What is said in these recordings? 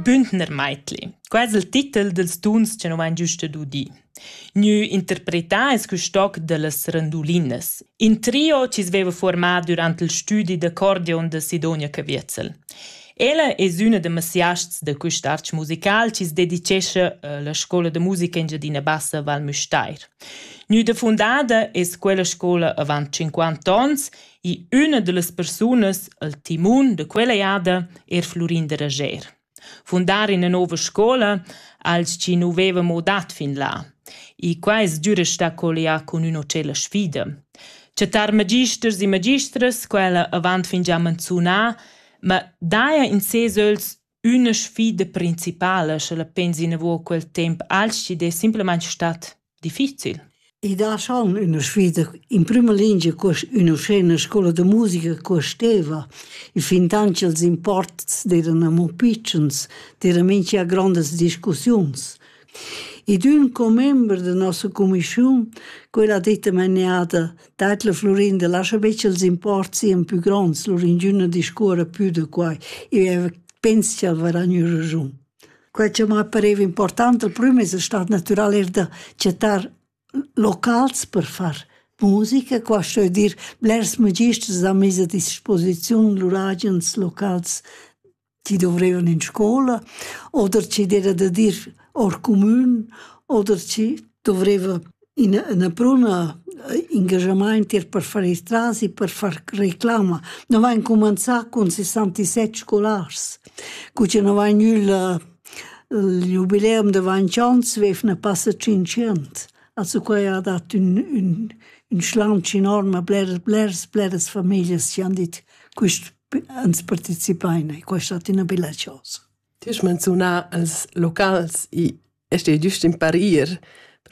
Bündner Meitli, quai es il titel dals tuns cha nu m'hain giüst udì. Gnü interpretà es quist toc da las randulinas, in trio chi's veiva formà dürant il stüdi d'accordeon da Sidonia Caviezel. Ella es üna da masiasts da quist arch musical chi's dedichescha a la scoula da musica Engiadina Bassa Val Müstair. Gnüda fundada es quella scoula avant 50 ons I üna da las persunas, il timun da quella jada, er Flurin da Rager. Fundar ina nova scola als chi nu veva mo dat fin là. E quai es giura sta collià cun üna cella sfida. Chattar magisters e magistras, quella avant fin già manzunà, ma daja in ses öls Üna sfida principala, sche la pens inavo quel temp als chi'd es simplamaing stat difficil? I dà schon üna sfida. In prüma lingia cuost ün'uschena scoula da musica cuosteva i fintant cha'ls imports d'eiran amo pitschens, d'eira mincha grondas discussiuns. Id ün commember da nossa cumischiun, quella ditta maniada, dat la Florin da laschar be ch'els imports sian pü gronds, lur ingüna discuorra pü da quai. Eu pens ch'el varà gnü raschun. Quai cha m'ha pareva important al prüm es stat natüral eir da chattar locals per far musica, qua sto eu dir blers magisters han mis a disposiziun lur agens locals chi dovrevan in scoula oder chi d'era da dir our cumün oder chi dovreva üna üna bruna ingaschamaint ir per far ils tras i per far reclama. No vain cumanzà cun sessantisset scolars, cu cha no vain gnülla il jubileum da vainchants vefna passa tschinchant. Also quai ha dat ün ün ün schlaunch enorm a bleras bleras bleras famiglias chi han dit quist ans participain e questa è ina bella cosa. Ti hai menziunà els locals e este giust in parir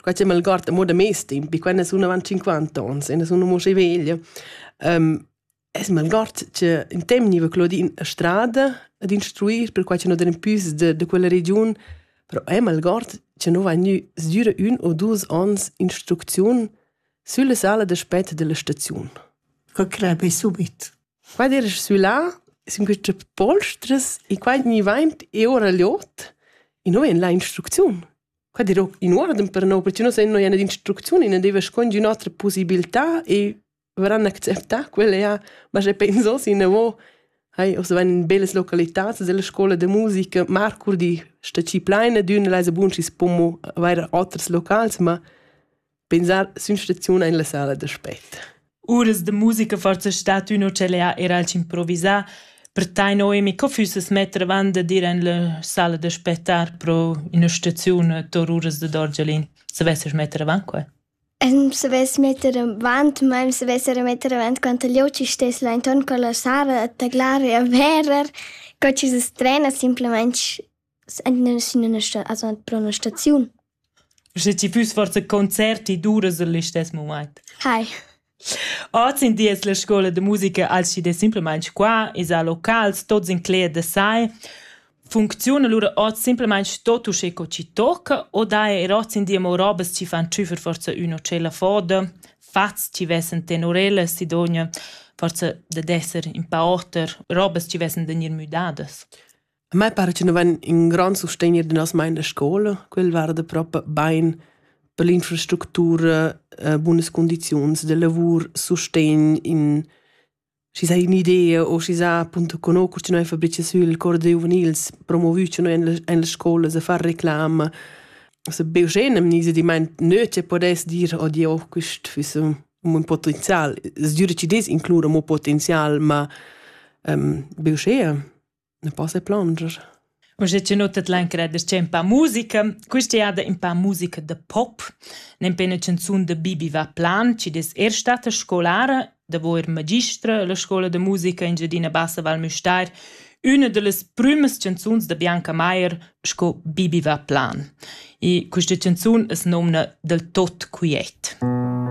perquai che mal guarda mo da mes temp, e quando sono avanti 50 anni, e sono mo che veglia, um, es mal guard che in temp niva Claudine a strada ad instruir, perquai che non den pius de, de quella region, però è mal guard che non va nu sdüre un o dus ans instrucziun sulla sala d'aspett della stazione. Che crebe subit. Qua d'eira sü là sün quista polstras e qua gnivaint e ora l'ot e nu vain là instrucziun. Qua dirò in uorden per no, perche nus no jana d'instrucziun e na deva schont ün'otra pusibiltà e varan acceptà quella ja, ma sche pensos inavò, hai, ossa vain in bellas localitats della scoula da musica. Marcurdi sta schi plaina d'ün, el esa bun schi's po mo avair oters locals, ma Pensar sün staziun in la sala d'aspect. Uras de musica forza stat ün ucellea era al improvisar, per teino emi co füsses metter avant de dir in la sala d'aspettar pro in staziun tor uras de Dorgelin. Se vesses metter avant qua? En se ves metter avant, ma se vesser metter avant quant gli oci stes la intorno con la sala a taglare e verer co ci se strena simplemente pro üna staziun. Sche ti füss forsa concert, ti duras il listess mumaint. Hai. Oz in di es la scoula da musica als chi'd es simplamaing qua, esa locals, tots inclet da sai. Funcziun alura hoz simplamaing tot uschè co chi tocca o daja eir hoz in di amo robas chi fan tschüfer forsa ün o tschella foda, fats chi vessen tenorella, sidogna forsa dad esser in pa oter, robas chi vessen da gnir müdadas. A me pare che nu vain ün grand sustegner da nossa main da scoula, quel varda propa bain per l'infrastructura, bunas cundiziuns da lavur, sustegn in schi s'ha ün'idea o schi s'ha appunto conosco cha noi fabrichas sül cor da giuvenils, promovü cha noi in las scoulas a far reclama. Also be uschè n'am gnisa dimaint nö che podess dir oddi oh quist füss ün bun potenzial. Es giüda chi dess inclur amo potenzial, ma be uschea. ne posse plonger. Ma se ci notet l'anchera de c'è un pa musica, questa è un pa musica de pop, ne pe una canzone de Bibi va plan, ci des er stata scolare, da vo er magistra la scola de musica in Giadina Bassa Val Müstair, una de les prümes canzuns de Bianca Maier sco Bibi va plan. E questa canzone es nomna del tot quiet. Mm.